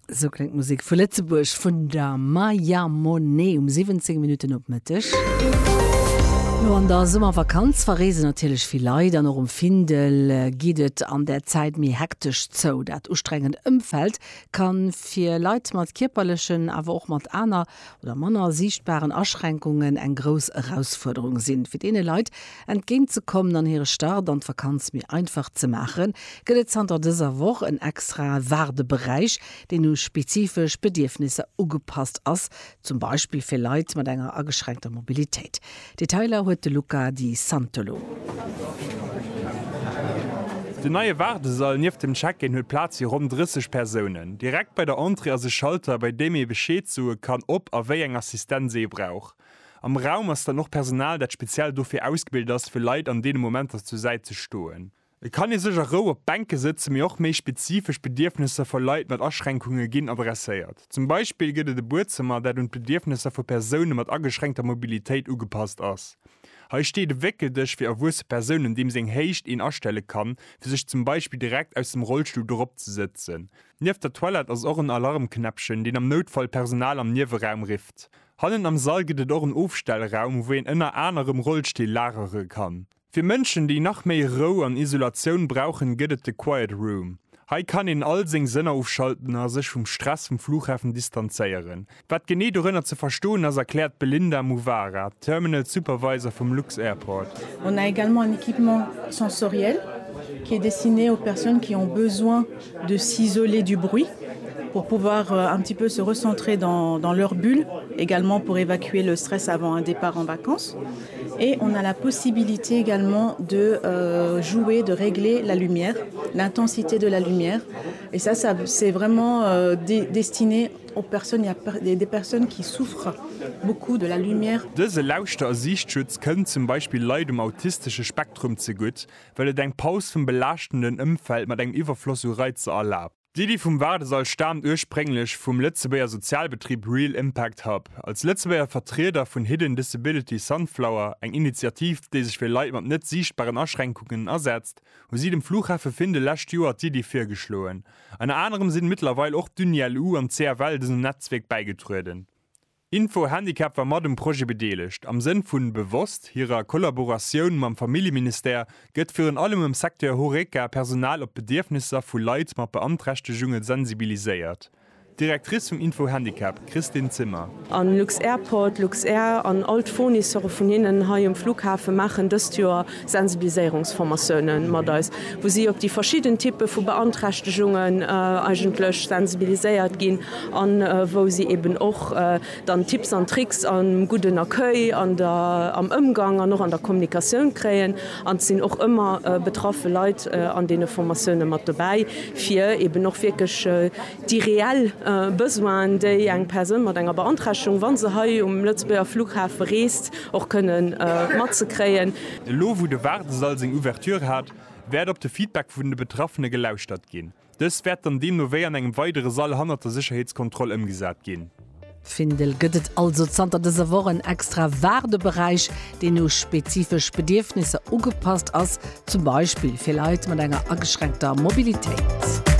Esou kléngt d'Musek vu Lëtzebuerg vun der Maya Monet um 17 Minutten op Mëtteg. Lo an der Summervakanz verreesen natierlech vill Leit an och um Findel geet et an där Zäit méi hektesch zou. Dat ustrengend Ëmfeld ka fir Leit mat kierperlechen, awer och mat aner oder manner siichtbaren Aschränkungen eng grouss Erausfuerderung sinn. Fir deene Leit entgéint ze kommen an hire Start an d'Vakanz méi einfach ze maachen, gëtt et zanter dëser Woch en extrae Waardeberäich, deen u spezifesch Bedierfnisser ugepasst ass, zum Beispill fir Leit mat enger ageschränkter Mobilitéit. Detailer huet de Luca Di Santolo. Den neie Waardesall nieft dem Check-in huet Plaz fir ronn 30 Persounen. Direkt bei der Entrée ass e Schalter, bei deem ee Bescheed soe kann, ob a wéi eng Assistenz ee brauch. Am Raum ass dann och Personal, dat speziell dofir ausgebilt ass, fir Leit an deene Momenter zur Säit ze stoen. Et kann ee sech a Rou op d'Bänke sëtzen, mee och méi spezifesch Bedierfnesser vu Leit mat Aschränkungen ginn adresséiert. Zum Beispill gëtt et e Buedzëmmer, dat un d'Bedierfnesser vu Persoune mat ageschränkter Mobilitéit ugepasst ass. Hei steet e Wéckeldësch fir erwuesse Persounen, deem seng Héicht een astelle kann, fir sech zum Beispill direkt aus dem Rollstull dorop ze sëtzen. Nieft der Toilette ass och en Alarmknäppchen, deen am Noutfall d'Personal am Nieweraum rifft. Hannen am Sall gëtt et och en Ofstellraum, wou een ënner anerem Rollstill lagere kann. Fir Mënschen, déi nach méi Rou an Isolatioun brauchen, gëtt et de Quiet Room. Hei kann een all seng Sënner ofschalten a sech vum Stress vum Fluchhafen distanzéieren. Wat genee dorënner ze verstoen ass, erkläert d'Belinda Muvara, Terminal Supervisor vum Lux-Airport. On a également un équipement sensoriel qui est destiné aux personnes qui ont besoin de s'isoler du bruit pour pouvoir un petit peu se recentrer dans leur bulle, également pour évacuer le stress avant un départ en vacances. Et on a la possibilité également de jouer, de régler la lumière, l'intensité de la lumière et ça ça c'est vraiment destiné aux personnes, il ya des personnes qui souffrent beaucoup de la lumière. Dëse Lauschter a Siichtschutz kënnt zum Beispill Leit um autistesche Spektrum zegutt, well et eng Paus vum belaaschtenden Ëmfeld mat engem Iwwerfloss u Reizer erlaabt. D'Iddi vum Waardesall staamt ursprénglech vum Lëtzebuerger Sozialbetrib Real Impact Hub. Als Lëtzebuerger Vertrieder vun Hidden Disability Sunflower, eng Initiativ, déi sech fir Leit mat net siichtbaren Aschränkungen asetzt, hu si dem Fluchhafe Findel lescht Joer d'Iddi virgeschloen. Ënner anerem sinn mëttlerweil och d'Uni-LU an d'CFL dësem Netzwierk bäigetrueden. Info Handicap war mat um Projet bedeelegt. Am Sënn vu bewosst hirer Kollaboratioun mam Familljeministère gëtt virun allem am Secteur Horeca Personal op d'Bedierfnisser vu Leit mat Beanträchtegunge sensibiliséiert. D'Directrice vum Info Handicap, Christine Zimmer. A Lux-Airport, Luxair an all d'Fournisseuren vun hinnen hei um Flughafen maachen dëst Joer Sensibiliséierungsformatiounen mat eis, wou si op déi verschidden Typpe vu Beanträchtegungen eigentlech sensibiliséiert ginn an wou si eben och dann Tipps an Tricks am gudden Accueil, an der, am Ëmgang an och an der Kommunikatioun kréien. An et sinn och ëmmer betraffe Leit an deene Formatiounen mat dobäi, fir eben och wierklech Déi reell Besoinen, déi eng Persoun mat enger Beanträchtegung, wa se hei um Lëtzebuerger Fluchhafe reest, och kënne mat ze kréien. Elo wou de Waardesall seng Ouverture hat, wäert op de Feedback vun de Betraffene gelauschtert ginn. Dës wäert dann deemno wéi an engem weidere Sall hannert der Sécherheetskontroll ëmgesat ginn. Findel gëtt et also zanter dëser Woch en extra Waardeberäich, deen u spezifesch Bedierfnisser ugepasst ass, zum Beispill fir Leit mat enger ageschränkter Mobilitéit.